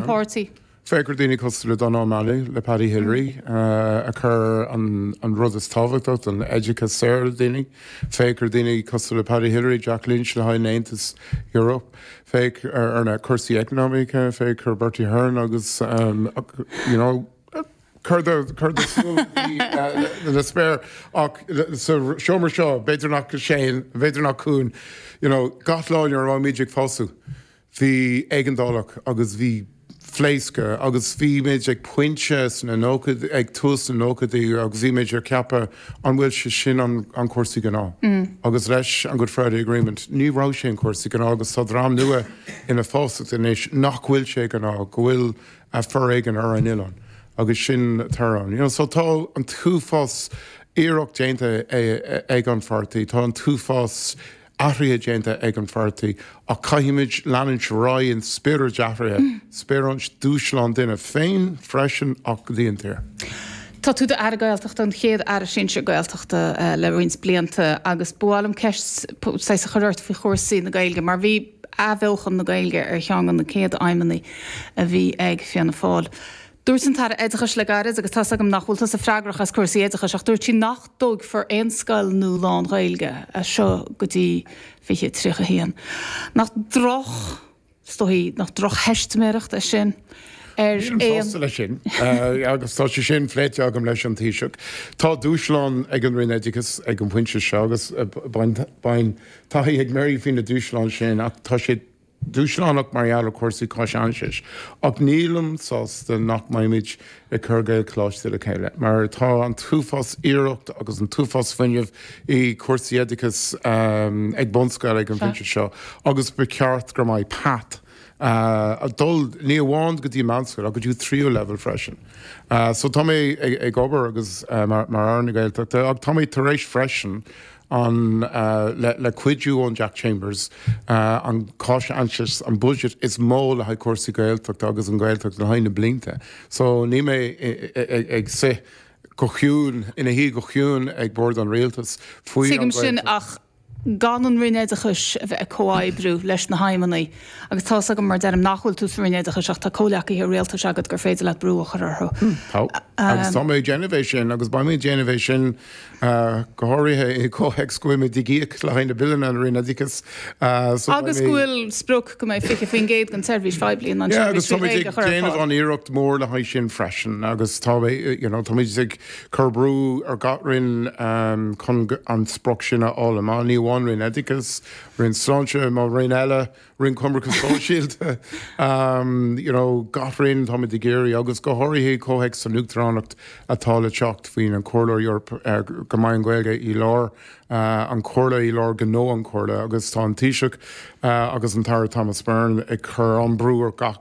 páirtí. Féach gur daoine cosúil le Donogh O'Malley, le Paddy Hillery a chur an rud is tábhachtach don oideachas saor le daoine. Féach gur daoine cosúil le Paddy Hillery, Jack Lynch le haghaidh an Aontais Eorpaigh. Féach ar na cúrsaí eacnamaíocha, féach ar Bertie Ahern agus you know, cur do shúil le spéir ach sa seomra seo b'fhéidir nach Shane, b'fhéidir nach Cúán, you know, gach lá nuair a bhí muid ag fás suas. Bhí éigeandálacht agus bhí pléascadh agus bhímid ag pointe sna nóchaid- ag tús na nóchaidí agus bhímid ag ceapadh an bhfuil sé sin an an cúrsaí gnáth. Agus leis an Good Friday Agreement ní raibh sé an cúrsaí gnáth agus tá dream nua ina fás suas anois nach bhfuil sé gnáth, go bhfuil a foréigean ar an oileán agus sin tar ann. You know, so tá an t-uafás iarracht déanta ag an pháirtí, tá an t-uafás athruithe déanta ag an pháirtí ach caithfimid leanúint ar aghaidh in spiorad athruithe, spioraid dúshláin dúinn féin freisin ach don tír. Tá tú i d'Aire Gaeltachta, an chéad Aire Sinsir Gaeltachta le roinnt blianta agus ba mhaith liom ceist saghas a chur ort faoi chúrsaí na Gaeilge mar bhí athbheochan na Gaeilge ar cheann de na céad aidhmeanna a bhí ag Fianna Fáil. Dúirt an tAire Oideachais le gairid, agus tá's agam nach bhfuil tusa freagrach as cúrsaí oideachais, ach dúirt sí nach dtógfar aon scoil nua lán-Ghaeilge as seo go dtí 2031. Nach droch, is dócha, nach droch-theistiméireacht é sin ar aon. Nílim sásta leis sin agus tá sé sin phléite agam leis an Taoiseach. Tá dúshlán ag an Roinn Oideachais ag an bpointe seo agus beidh an-taithí ag Mary faoi na dúshláin sin ach tá sé dúshlánach mar gheall ar chúrsaí cáinaisnéis, ach nílim sásta nach mbeimid ag cur Gaelcholáiste le chéile, mar tá an t-uafás iarracht agus an t-uafás fuinnimh i cúrsaí oideachais ag bunscoil ag an bpointe seo agus ba cheart gur mbeidh path ag dul ní amháin go dtí meánscoil ach go dtí tríú leibhéal freisin. So tá mé ag obair agus mar Aire na Gaeltachta ach táimid tar éis freisin, an le cuidiú ón Jack Chambers an cáinaisnéis an budget is mó le haghaidh cúrsaí Gaeltachta agus an Ghaeltacht le haghaidh na blianta so níl mé ag suí go ciúin ina shuí go ciúin ag bord an Rialtas faoi an Tuigim sin Ghaeltacht. ach gan an Roinn Oideachais a bheith ag comhoibriú leis na haidhmeanna agus tá's agam mar deirim nach bhfuil tú sa Roinn Oideachais ach tá comhleacaithe Rialtais agat gur féidir leat brú a chur orthu. Tá agus tá mé ag déanamh é sin agus beimid ag déanamh é sin go háirithe i gcomhthéacs go bhfuilimid ag íoc le haghaidh na Billeanna an Roinn Oideachais so beidh mé. Agus go bhfuil sprioc go mbeidh 20% den tseirbhís phoiblí in ann seirbhís trí Ghaeilge a chur ar fáil. Agus táimid ag déanamh an-iarracht mór le haghaidh sin freisin agus tá mé you know táimid ag cur brú ar gach Roinn chun an sprioc sin a fháil, ní amháin Roinn Oideachais, Roinn Sláinte, mo Roinn eile, Roinn Coimirce Sóisialta, you know, gach Roinn táimid ag iarraidh agus go háirithe i comhthéacs an Uachtaránacht atá le teacht faoin an Chomhairle Eorpach, go mbeidh an Ghaeilge i lár an Chomhairle, i lár gnó an Chomhairle agus tá an Taoiseach agus an tAire Thomas Byrne ag cur an brú ar gach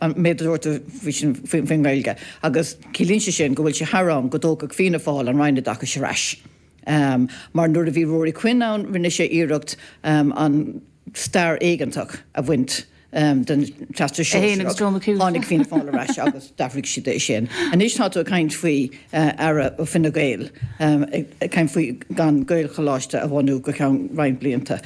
an méid a dúirt tú faoi sin, faoin nGaeilge, agus ciallaíonn sé sin go bhfuil sé thar am go dtógfadh Fianna Fáil an Roinn Oideachais ar ais, mar nuair a bhí Ruairí Quinn ann rinne sé iarracht an stair éigeantach a bhaint den Teastas Sóisearach, tháinig Fianna Fáil ar ais agus d'athraigh siad é sin. Anois tá tú ag caint faoi Aire ó Fine Gael ag caint faoi gan Gaelcholáiste a bhunú go ceann roinnt blianta.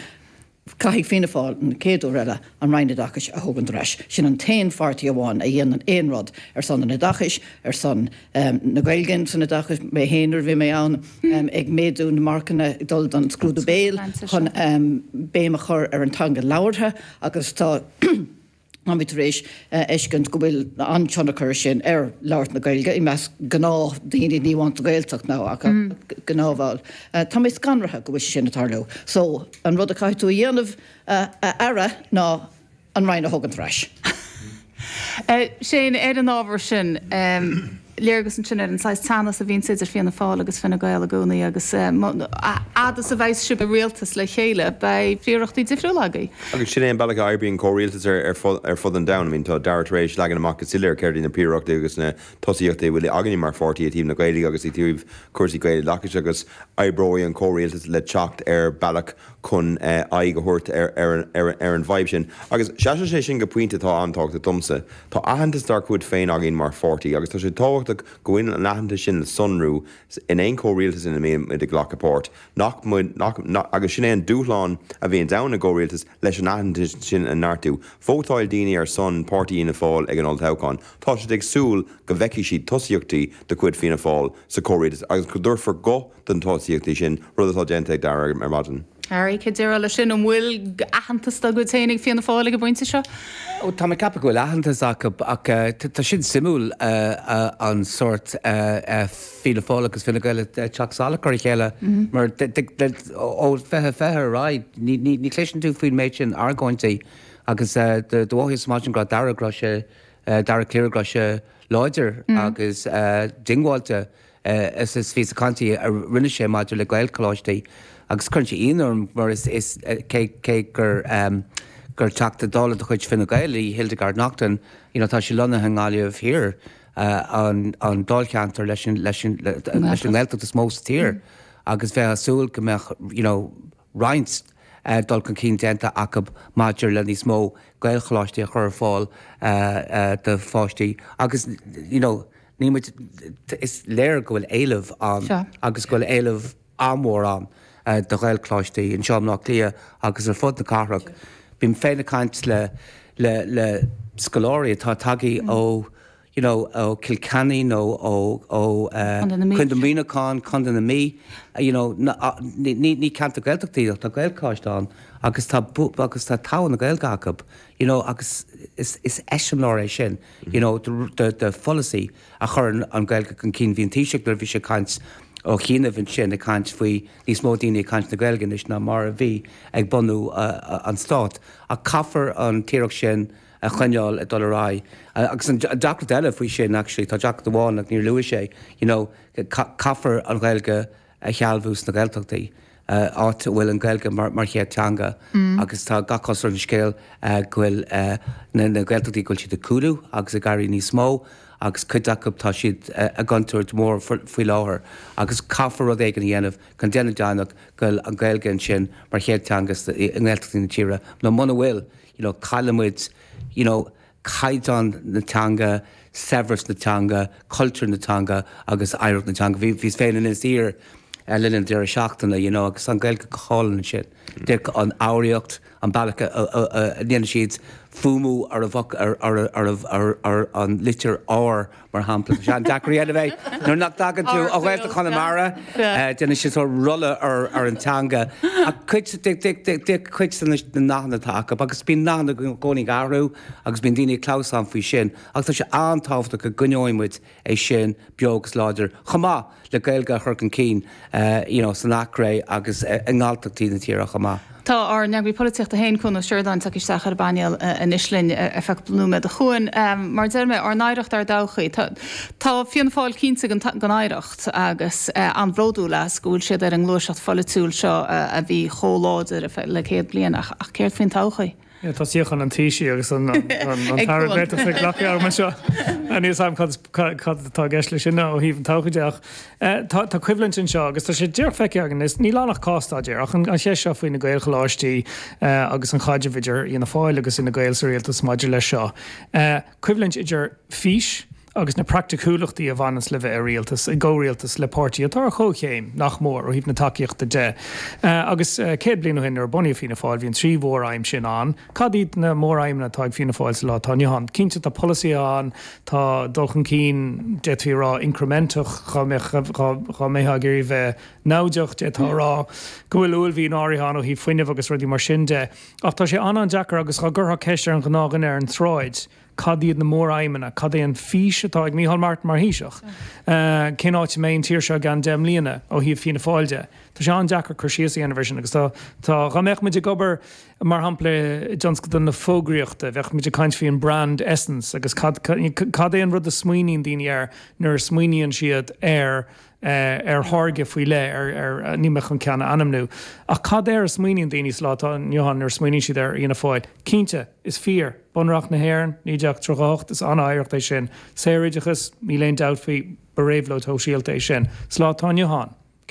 Caithfidh Fianna Fáil an céad uair eile an Roinn Oideachais a thógaint ar ais. Sin an t-aon pháirtí amháin a dhéanann aon rud ar son an oideachais, ar son na Gaeilge san oideachas. Mé fhéin nuair a bhí mé ann ag méadú na marcanna ag dul don scrúdú béil chun béim a chur ar an teanga labhartha agus tá Táimid tar éis a fheiscint go bhfuil an-tionchar sin ar labhairt na Gaeilge i measc gnáthdhaoine, ní amháin sa Ghaeltacht ach i ngach aon bhall. Tá mé scanraithe go bhfuil sé sin ag tarlú. So, an rud a chaithfidh tú a dhéanamh a Aire ná an Roinn a thógaint ar ais. Seán, ar an ábhar sin. léargas ansin ar an saghas teannas a bhíonns idir Fianna Fáil agus Fine Gael i gcónaí agus a fhad is a bheidhs siad i rialtas le chéile beidh príorachtaí difriúla acu. Agus sin é an bealach a oibríonn comhrialtas ar fud an domhain. I mean tá Dara tar éis leagan amach go soiléir céard iad na príorachtaí agus na tosaíochtaí a bhfuil againne mar pháirtí i dtaobh na Gaeilge agus i dtaobh cúrsaí Gaeloideachais agus oibreoidh an comhrialtas le teacht ar bhealach chun aghaidh a thabhairt ar an bhfadhb sin. Agus síneann sé sin go pointe atá an-tábhachtach domsa. Tá aitheantas dár gcuid féin againn mar pháirtí agus tá sé tábhachtach go bhfuil an aitheantas sin le sonrú in aon chomhrialtas ina mbímid ag glacadh páirt, nach mbeidh, agus sin é an dúshlán a bhíonns ann i gcomhrialtas, leis an aitheantas sin a neartú. Vótáil daoine ar son páirtí Fhianna Fáil ag an Olltoghchán, tá siad ag súil go bhfeicfidh siad tosaíochtaí de chuid Fianna Fáil sa chomhrialtas agus go dtabharfar guth do na tosaíochtaí sin, rud atá déanta ag Dara ar maidin. Harry, cé déarfá leis sin? An bhfuil aitheantas dá gcuid féin ag Fianna Fáil ag an bpointe seo? Ó, táim ag ceapadh go bhfuil aitheantas acu, ach tá sin suimiúil, an sórt Fianna Fáil agus Fine Gael ag teacht salach ar a chéile, mar ó fiche, fiche ar aghaidh, ní chloiseann tú faoin méid sin argóintí, agus do mhothaíos ar maidin go raibh Dara, go raibh sé, Dara Calleary, go raibh sé láidir agus diongbháilte. Is píosa cainte a rinne sé maidir le Gaelcholáistí agus cuireann sé ionadh orm mar cé gur Teachta Dála de chuid Fine Gael í Hildegarde Naughton you know tá sí lonnaithe i nGaillimh Thiar, an dáilcheantar leis an nGaeltacht is mó sa tír agus bheifeá ag súil go mbeadh you know roinnt dul chun cinn déanta acu maidir le níos mó Gaelcholáistí a chur ar fáil do pháistí agus you know. Ní muid, is léir go bhfuil éileamh ann agus go bhfuil éileamh an-mhór ann do Ghaelcholáistí anseo i mBleá Cliath agus ar fud na cathrach. Bím féin ag caint le, le, le scoláirí atá ag tagairt ó you know ó Cill Chainnigh nó ó, ó eh Contae Mhuineacháin, Contae na Mí, you know ní, ní, ní ceantar Gaeltachta iad ach tá Gaelcholáiste ann agus tá, agus tá togha na Gaeilge acu you know agus is, is eiseamláir é sin. you know de pholasaí a chuireann an Gaeilge chun cinn. Bhí an Taoiseach nuair a bhí sé ag caint ó chianaibh ansin ag caint faoi níos mó daoine ag caint na Gaeilge anois ná mar a bhí ag bunú an Stát ach caithfear an iarracht sin a choinneáil ag dul ar aghaidh. Agus an deacracht eile faoi sin actually ná deacracht amháin ach níor luaigh sé you know caithfear an Ghaeilge a shealbhú sna Gaeltachtaí, áit a bhfuil an Ghaeilge mar chéad teanga agus tá gach cosúlacht ar an scéal go bhfuil na Gaeltachtaí, go bhfuil siad ag cúlú agus ag éirí níos mó agus cuid acu tá siad i gcontúirt mhór faoi láthair agus caithfear rud éigin a dhéanamh chun déanamh deimhneach go bhfuil an Ghaeilge ansin mar chéad teanga i nGaeltachtaí na tíre nó muna bhfuil you know caillfimid you know. caighdeán na teanga, saibhreas na teanga, cultúr na teanga agus oidhreacht na teanga. Bhí, bhíos féin in Inis Oírr le linn an deireadh seachtaine you know agus tá an Ghaeilge go hálainn ansin. Like an fhoghraíocht, an bealach a ndéanann siad fuaimiú ar an, ar an litir R mar shampla. Tá sé an-deacair é a bheith nuair nach dtagann tú ó Ghaeltacht Chonamara. Déanann siad sórt rolla ar an teanga. Ach cuid de, cuid de na nathanna atá acu, agus bíonn nathanna i gcónaí ag athrú agus bíonn daoine ag clamhsán faoi sin, ach tá sé an-tábhachtach go gcoinneoidh muid é sin beo agus láidir chomh maith. le Gaeilge a chur chun cinn you know san Eachréidh agus i nGalltachtaí na tíre chomh maith. Tá ár n-Eagraí Polaitíochta féin, Cuan Ó Seireadáin, ag teacht isteach ar an bpainéal anois linn ar feadh nóiméad. A Chuain, mar a deir mé, ár n-oidhreacht, ár dtodhchaí. Tá tá Fianna Fáil cinnte den den oidhreacht agus an-bhródúil as go bhfuil siad ar a ngluaiseacht pholaitiúil seo a bhí chomh láidir le céad bliain ach céard faoin todhchaí? Tá suíochán an Taoisigh agus an Aire Gaeltachta glactha agam anseo. Níl 's agam cad atá i gceist leis sin ó thaobh an todhchaí de ach tá coimhlint anseo agus tá sé díreach feicthe againn is níl ann ach cás-staidéar ach an cheist seo faoi na Gaelcholáistí agus an caidreamh idir Fhianna Fáil agus Fhine Gael sa Rialtas maidir leis seo. Coimhlint idir fís, agus na praiticiúlachtaí a bhaineanns le bheith i rialtas, i gcomhrialtas le páirtí atá ar chomhchéim, nach mór, ó thaobh na tacaíochta de. Agus céad bliain ó shin nuair a bunaíodh Fianna Fáil bhí na trí mhór-aidhm sin ann. Cad iad na mór-aidhmeanna atá ag Fianna Fáil sa lá atá inniu ann? Cinnte tá polasaithe ann, tá dul chun cinn, d'fhéadfaí a rá, incrementach, dhá mbeadh, dhá mbeifeá ag iarraidh bheith namhaideach d'fhéadfá a rá go bhfuil uaillmhian áirithe ann ó thaobh fuinnimh agus rudaí mar sin de. Ach tá sé an-an-deacair agus dhá gcuirtheá ceist ar an ghnáthdhuine ar an tsráid, cad iad na mór-aidhmeanna, cad é an fhís atá ag Micheál Martin mar Thaoiseach, cén áit a mbeidh an tír seo i gceann deich mbliana ó thaobh Fianna Fáil de. Tá sé an-deacair cur síos a dhéanamh air sin agus tá, dhá mbeadh muid ag obair mar shampla i dtionscal na fógraíochta, bheadh muid ag caint faoin brand essence agus cad, cad é an rud a smaoiníonn daoine air nuair a smaoiníonn siad ar, ar tháirge faoi leith, ar, ar, níl mé chun ceann a ainmniú ach cad air a smaoiníonn daoine sa lá atá inniu ann nuair a smaoiníonn siad ar Fhianna Fáil? Cinnte. Is fíor. Bunreacht na hÉireann, 1938, is an-oidhreacht é sin. Saor-oideachas, níl aon dabht faoi, ba réabhlóid shóisialta é sin. Sa lá atá inniu ann, céard